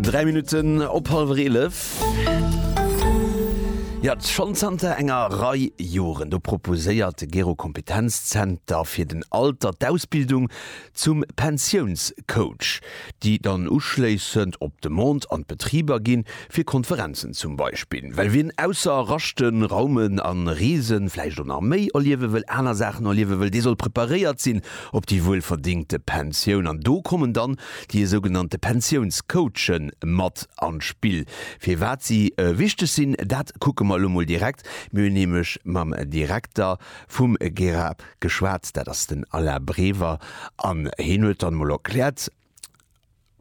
3 Minutten op halwer 11. Ja, schonn zanter enger Rei Joren, do proposéiert de Gero Kompetenzzenter fir den Alter d'Ausbildung zum Pensiounscoach, déi dann uschléissend op Demande an d'Betriber ginn, fir Konferenzen zum Beispill. Well wien ausser Raschten, Raumen a Reesen vläicht och nach méi erliewe wëll, aner Saachen erliewe wëll, dee soll preparéiert sinn op déi wuelverdingte Pensioun an do kommen dann déi esougenannte Pensiounscoache mat an d'Spill. Firwat si wichteg sinn, dat kucke mer elo mol direkt. Mir hunn nämlech mam Direkter vum GERA geschwat, dat ass den Alain Brever an hien huet dann emol erkläert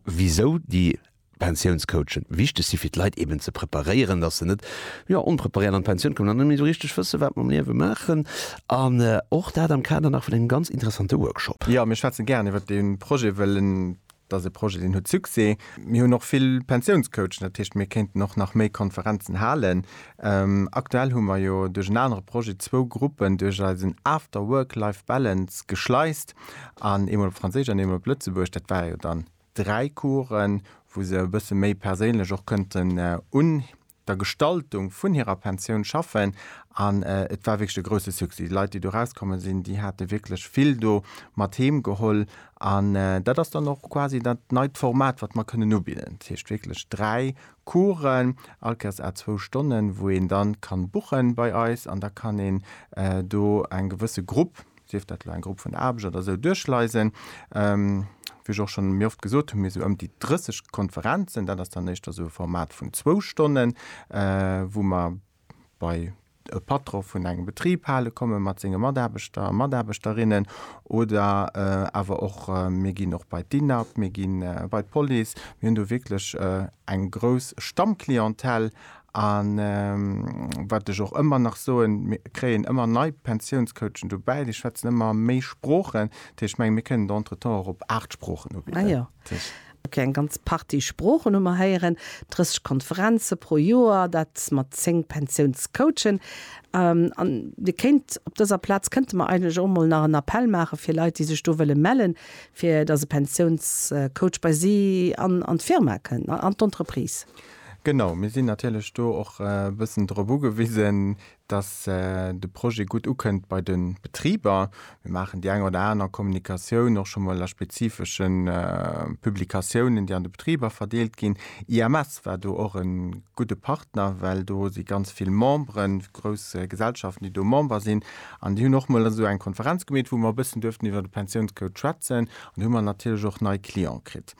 wisou déi Pensiounscoachen wichteg si fir d'Leit eben ze preparéieren, datt se net, jo, onpreparéiert an d'Pensioun kommen an net méi esou richteg wësse wat mam Liewe maachen. An och dat am Kader nach vun engem ganz interessante Workshop. Jo, mir schwätze gären iwwert dee Projet, well en ass e Projet deen huet Succès. Mir hunn och vill Pensiounscoachen, dat heescht mir kéinten och nach méi Konferenzen halen. Aktuell hu mer jo duerch en anere Projet zwou Gruppen duerch eisen After Work Life Balance geschleist an eemol op Franséisch an eemol op Lëtzebuergesch. Dat war jo dann 3 Coursen, wou se e bësse méi perséinlech och kënnten un der Gestaltung vun hirer Pensioun schaffen. An et war wierklech e grousse Succès. Déi Leit, déi do rauskomme sinn, déi hate wierklech vill do mat heem geholl. An dat ass dann och quasi dat neit Format, wat mer kënnen ubidden. Dat heescht wierklech 3 Coursen, all Kéiers à zwou Stonnen, wou een da ka buche bei eis. An da kann een do eng gewësse Grupp sief dat elo eng Grupp vun Aarbecht oder esou, duerchleisen. Wéi ech och schonn méi oft gesot hunn, mir esou ëm déi 30 Konferenzen, dat ass dann éischter esou e Format vun zwou Stonnen, wou mer bei e Patron vun engem Betrib hale komme mat senge Mataarbechter a Mataarbechterinnen oder awer och mir ginn och bei d'INAB, mir gi bei d'Police. Mir hunn do wierklech eng grouss Stammclientèle A wat ech och ëmmer nach soen, mir kréien ëmmer nei Pensiounscoachen dobäi, déi schwätzen ëmmer méi Sproochen. Dat heescht, ech mengen, mir kënnen do entretemps och op aacht Sproochen ubidden. Ok, eng ganz Partie Sproochen hu mer héieren, 30 Konferenze pro Joer, dat mat zéng Pensiounscoachen. An Dir kéint op dëser Plaz kënnte mer eigentlech och emol nach en Appell maache fir Leit, déi sech do wëlle mellen, fir datt e Pensiounscoach bei si an d'Firma kënnt, an d'Entreprise. Genau, mir sinn natierlech do och e bëssen drop ugewisen, dass de Projet gutt ukënnt bei de Betriber. Mir maachen déi eng oder aner Kommunikatioun och scho mol a spezifesche Publikatiounen, déi an de Betriber verdeelt ginn. IMS war do och e gudde Partner, well do si ganz vill Memberen, grouss Gesellschaften, déi do Member sinn. An déi hunn och mol esou eng Konferenz gemeet, wou mer e bëssen duerften iwwer de Pensiounscode schwätzen. An do hu mer natierlech och nei Cliente kritt.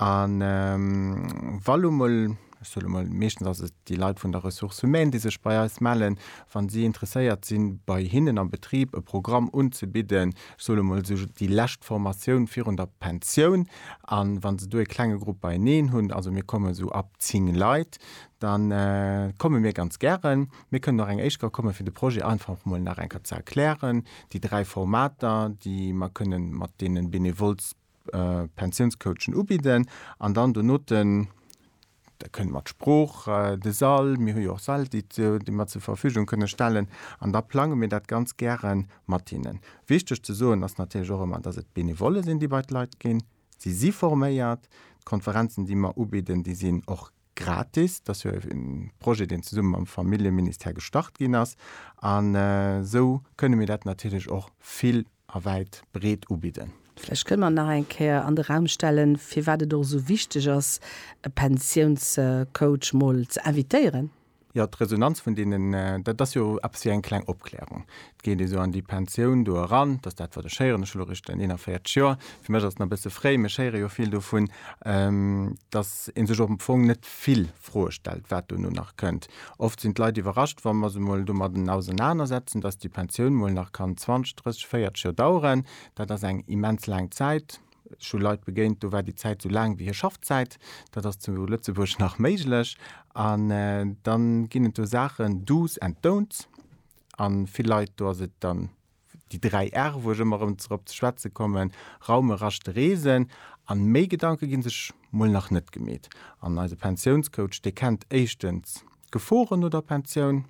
A wa lo mol, ech soe lo mol, meeschtens ass et déi Leit vun der Ressources humaines, déi sech bei eis mellen, wa si interesséiert sinn, bei hinnen am Betrib e Programm unzebidden, ech soe lo mol esou déi lescht Formatioun virun der Pensioun, a wa se do e klenge Grupp beineen hunn, also mir kommen esou ab zéng Leit, da komme mir ganz gären. Mir kënnen och eng éischt Kéier kommen, fir de Projet einfach mol nach eng Kéier ze erklären, déi dräi Formater, déi mer kënnen mat deene Benevolles. Pensiounscoachen ubidden an dann donoten da kënnt mat Sprooch, de Sall, mir hu jo och Säll déi mer zur Verfügung kënne stellen an da plange mir dat ganz gäre mat hinnen. Wichteg ze soen ass natierlech och ëmmer, datt et Benevolle sinn déi bei d'Leit ginn. Si si forméiert. D'Konferenzen déi mer ubidden, déi sinn och gratis. Dat ass jo e Projet deen zesumme mam Familljeministère gestart ginn ass an esou kënne mir dat natierlech och vill a wäit breet ubidden. Vläicht kënne mer nach eng Kéier an de Raum stellen, firwat et och esou wichteg ass, e Pensiounscoach mol ze invitéieren. Jo, d'Resonanz vun deenen, dat ass jo eppes wéi eng kleng Opklärung. Et geet ee sou an déi Pensioun do eran, dass dat, wat ech héieren, ech hu elo erëscht 41 Joer, fir mech ass et nach e bësse fréi, mee ech héiere jo vill dovun, dass ee sech och am Fong net vill Froe stellt, wat dono nach kënnt. Oft sinn d'Leit iwwerrascht, wa mer se emol domadden ausenanersetzen, dass déi Pensioun mol nach kann 20, 30, 40 Joer daueren. Dat ass eng immens laang Zäit. Ech hu Leit begéint, do war déi Zäit esou laang wéi hir Schaffzäit. Dat ass zu Lëtzebuerg nach méiglech. An dann ginn et do Saachen, Do's and Don'ts. A vill Leit, do ass et dann Déi dräi R'e, wou ech ëmmer erëm drop ze schwätze kommen, raumen, raschten, reesen. An méi Gedanke ginn sech mol nach net gemeet. An eise Pensiounscoach, dee kennt éischtens d'Geforen no der Pensioun,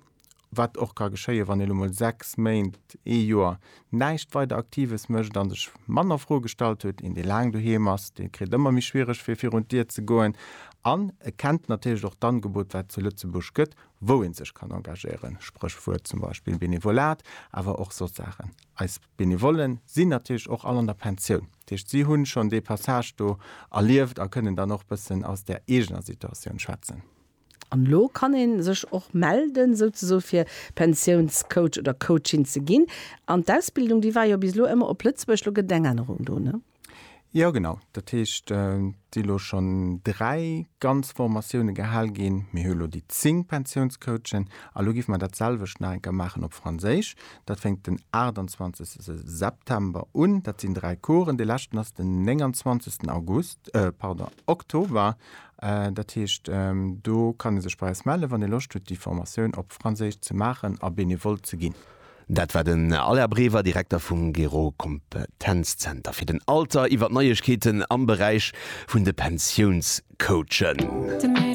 wat och ka geschéien, wann ee lo mol 6 Méint, ee Joer näischt weider Aktives mécht a sech manner Froe gestallt huet. Een, dee laang doheem ass, dee kritt ëmmer méi schwiereg, fir virun d'Dier ze goen. An e kennt natierlech och d'Angebot, wat zu Lëtzebuerg gëtt, wou ee sech kann engagéieren, Spréchwuert zum Beispill Benevolat, awer och soss Saachen. Eis Benevollen sinn natierlech och all an der Pensioun. Dat heescht, si hunn schonn dee Passage do erlieft a kënnen dann och bëssen aus der eegener Situatioun schwätzen. An elo kann ee sech och melden, souzesoe fir Pensiounscoach oder coachin ze ginn. An d'Ausbildung, déi war jo bis elo ëmmer op Lëtzebuerg, elo gëtt et eng Ännerung do, ne? Jo genau, dat heescht et si elo schonn dräi ganz Formatioune gehal ginn. Mir hu elo déi zéng Pensiounscoachen a elo géife mer dat selwecht nach eng Kéier maachen op Franséisch. Dat fänkt den 28 September un, dat sinn dräi Coursen. Dee leschten ass den 29 August, pardon, Oktober. Dat heescht do kann ee sech bei eis mellen, wann ee Loscht huet déi Formatioun op Franséisch ze maachen a benevol ze ginn. Dat war den Alain Brever, Direkter vum Gero-Kompetenzzenter fir den Alter, iwwer d'Neiegkeeten am Beräich vun de Pensiounscoachen.